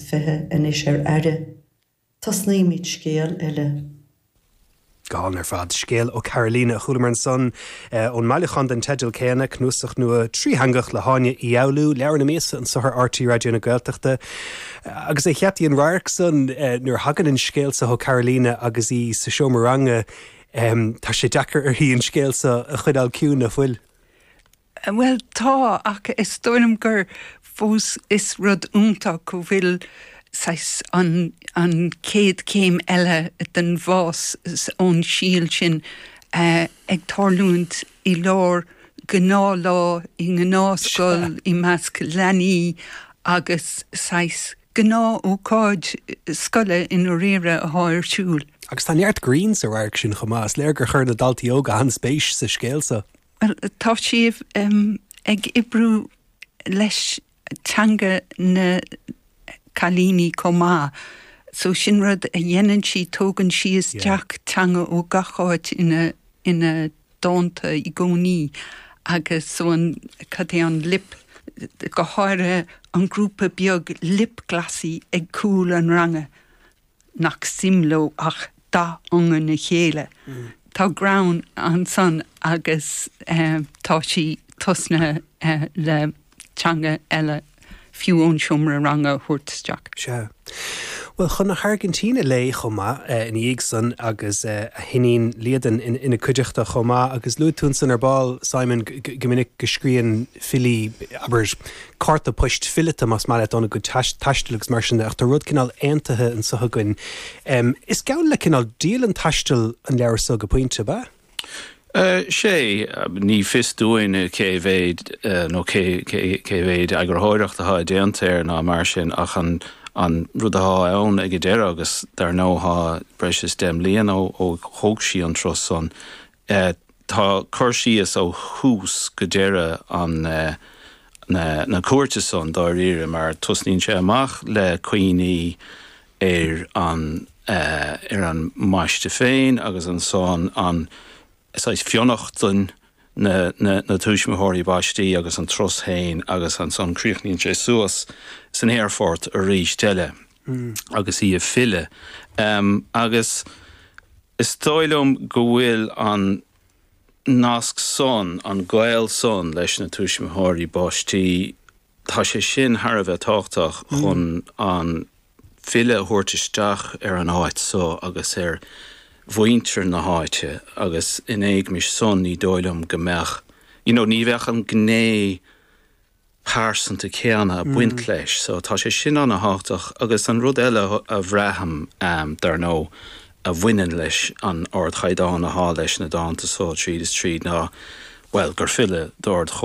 20 anois ar aire. Tosnaímid scéal eile againn ar fad. Scéal ó Carolina a chualamar ansan, ón mbailiúchán den teideal céanna, cnuasach nua trítheangach le hÁine Uí Fhoghlú, Leabhar na Míosa, anso ar RTÉ Raidió na Gaeltachta. Agus é cheapthaí an radharc san, nuair a thagann an scéal so ó Carolina agus í sa seomra ranga, tá sé deacair uirthi an scéal so a choinneáil ciúin, ná fuil? Bhuel, tá, ach is dóigh liom gur fós is rud iontach go bhfuil saghas an, an chéad chéim eile den fhás ón síol sin ag tarlúint i lár gnáthlá i ngnáthscoil i measc leanaí agus saghas gnáthócáid scoile i ndáiríre athá ar siúl. Agus tá neart grinn sa radharc sin chomh maith. Is léir gur chuir na daltaí óga an-spéis sa scéal so. Bhuel, tá sí ag oibriú leis teanga na cailíní chomh maith. So sin rud a dhéanann sí, tógann sí isteach teanga ó gach áit ina dánta i gcónaí agus so an, cad é an lip, go háirithe an grúpa beag lip-glossy ag cúl an ranga. nach suim leo ach dath iongan a chéile. Tá greann ansan agus tá sí tosnaithe le teanga eile fiú ón seomra ranga a thabhairt isteach. Sea. Bhuel, chun na hAirgintíne léi chomh maith ina dhiaidh san agus a hiníon Liadan ina cuideachta chomh maith agus luaigh tú ansan ar ball, Simon, go minic go scríonn filí, abair, cárta poist fileata más maith leat, óna gcuid taistil agus mar sin de, ach tá rud cineál aontaithe anseo againn. Is geall le cineál dialann taistil an leabhar so go pointe, ab ea? Sea. Ní fios dúinn cé mhéid nó cé mhéid eagarthóireacht athá déanta air ná mar sin ach an rud athá ann ag an deireadh, agus dar ndóigh thá breis is deich mbliana ó thóg sí an turas san, e Tá cur síos ó thús go deireadh an na na cuairte san dáiríre mar tosnaíonn sé amach le cuimhní ar an ar an mbaiste féin agus ansan an saghas fionnachtain na na na tuismitheoirí baistí agus an turas féin agus ansan críochnaíonn sé suas san aerfort aríst eile. agus í ag filleadh. Agus is dóigh liom go bhfuil an nasc san, an gaol san leis na tuismitheoirí baistí, tá sé sin thar a bheith tábhachtach chun an file a thabhairt isteach ar an áit so agus ar mhuintir na háite agus in éagmais san ní dóigh liom go mbeadh, you know, ní bheadh an ghné pearsanta céanna a baint leis so tá sé sin ana thábhachtach agus an rud eile a bhraithim dar ndó a bhaineann leis an ard chaighdeán athá leis na dánta so tríd is tríd ná bhuel gur file d'ard